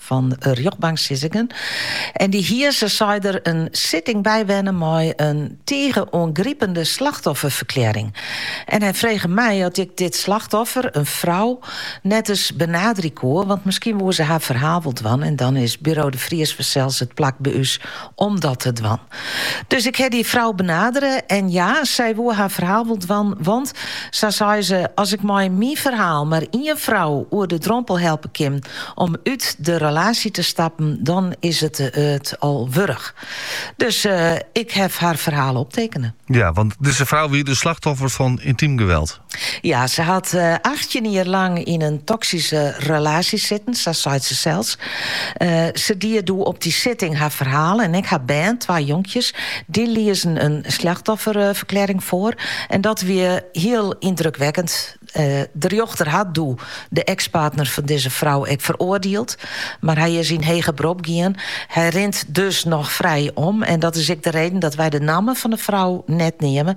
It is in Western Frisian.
fan de rjochtbanksittingen en dy hie, sa sei er, in sitting bywenne mei in tige oangripende slachtofferferklearring. En hy frege my oft ik dit slachtoffer, in frou, net ris benaderje koe, want miskien woe se har ferhaal wol dwaan en dan is Buro de Vries fansels it plak by ús om dat te dwaan. Dus ik ha dy frou benadere en ja, sy woe har ferhaal wol dwaan, want, sa sei se, as ik mei myn ferhaal mar ien frou oer de drompel helpe kin om út de relaasje te stappen, dan is it it al wurdich. Dus ik haw har ferhaal optekene. Ja, want dizze frou wie dus slachtoffer fan yntiem geweld? Ja, se hat eh, achttjin jier lang yn in toksyske relaasje sitten, sa seit se sels. Eh, se die doe op dy sitting har ferhaal en ek har bern, twa jonkjes, dy liezen in slachtofferferklearring foar. En dat wie hiel yndrukwekkend. Eh, de rjochter hat doe de ekspartner fan dizze frou ek feroardield, mar hy is yn heger berop gien. Hy rint dus noch frij om en dat is ek de reden dat wy de namme fan de frou net neame,